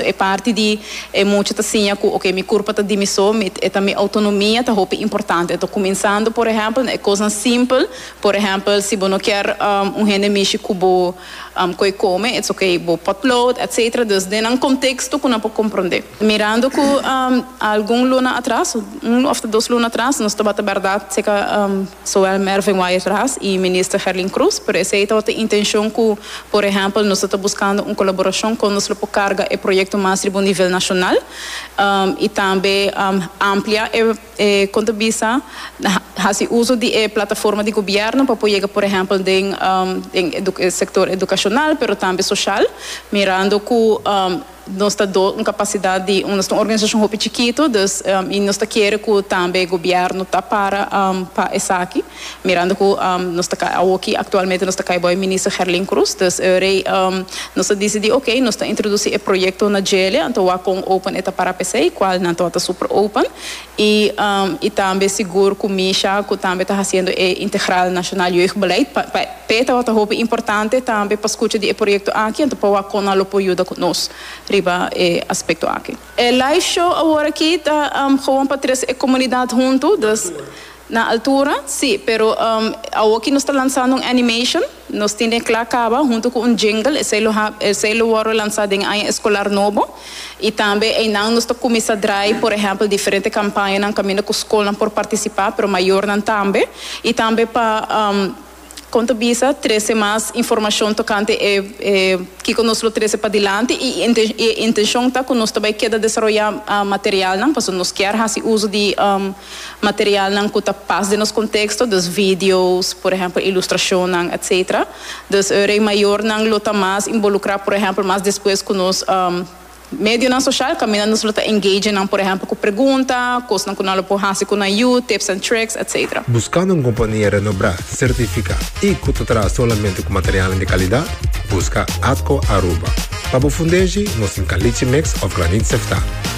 E parti di e mucha ta siña ku oke, mi kurpa ta di mi so, mi e ta mi outonomia ta hopi importante. Enton kuminsando por ehèmpel na e kosnan simpel, por ehèmpel si bo no kier un hende mishi ku bo koe kome, it's okay, bo potlood etcetera, dus den nan konteksto ku nan por komprondé. Mirando ku algun luna atras, un òf ta dos luna atras, nos tabata bèrdat seka. Sowel Mervin Wyatt Ras y Minister Herlin Cruz, pero esey tabata intencion cu, por ehempel, nos ta ta buscando un colaboracion con nos lo por carga e proyecto mas riba un nivel nacional y tambe amplia e, e con ta bisa, haci uzo di e plataforma di gobierno pa por yega, por ehempel, den den e sector educacional pero tambe social, mirando cu. Nos ta do un kapasidat di, nos ta un organisashon hopi chikitu, dus i nos ta kere ku tambe gobièrnu ta para pa esaki, mirando ku nos ta kai awoki aktualmente nos ta kai bai Minister Gerlin Croes, dus e orei nos a disidí oke nos ta introdusí e proyekto na Djele, anto wak kon open e ta para p'esei, kual nan tabata super open. I i tambe sigur ku Misha ku tambe ta hasiendo e Integral Nacional Jeugdbeleid pa pa e tabata hopi importante tambe pa skucha di e proyekto aki anto pa wak kon nan lo por yuda ku nos riba e aspekto aki. E live show awor aki ta gewoon pa tres e komunidat huntu, dus na altura si pero awor aki nos ta lansando un animation. Nos tin den Kla Kaba huntu ku un jingle, esei lo ha, esei lo wòrdu lansá den aña eskolar nobo, i tambe einan nos ta kuminsá drai, por ehèmpel, diferente kampañanan kaminda ku skolnan por partisipá, pero mayornan tambe, i tambe pa, um, kon ta bisa, trese mas informashon tokante e, e kiko nos lo trese padilanti, i inten, i e intenshon ta ku nos ta bai keda desaroyá, um, materialnan, pasobra nos kier hasi uso di, um. Materialnan ku ta pas den nos konteksto, dus video's, por ehèmpel ilustrashonnan, etc. Dus e rei mayornan lo ta mas involukrá, por ehèmpel, mas despues ku nos medionan soshal, kaminda nos lo ta engage nan, por ehèmpel, ku pregunta, kosnan ku nan lo por hasi ku nan yu, tips and tricks, etc. Buskando un kompania renobrá, sertifiká i ku ta traha solamente ku materialnan di kalidat, buska Atco Aruba. Pa bo fundeshi, nos tin Caliche Mix òf Granit Sefta.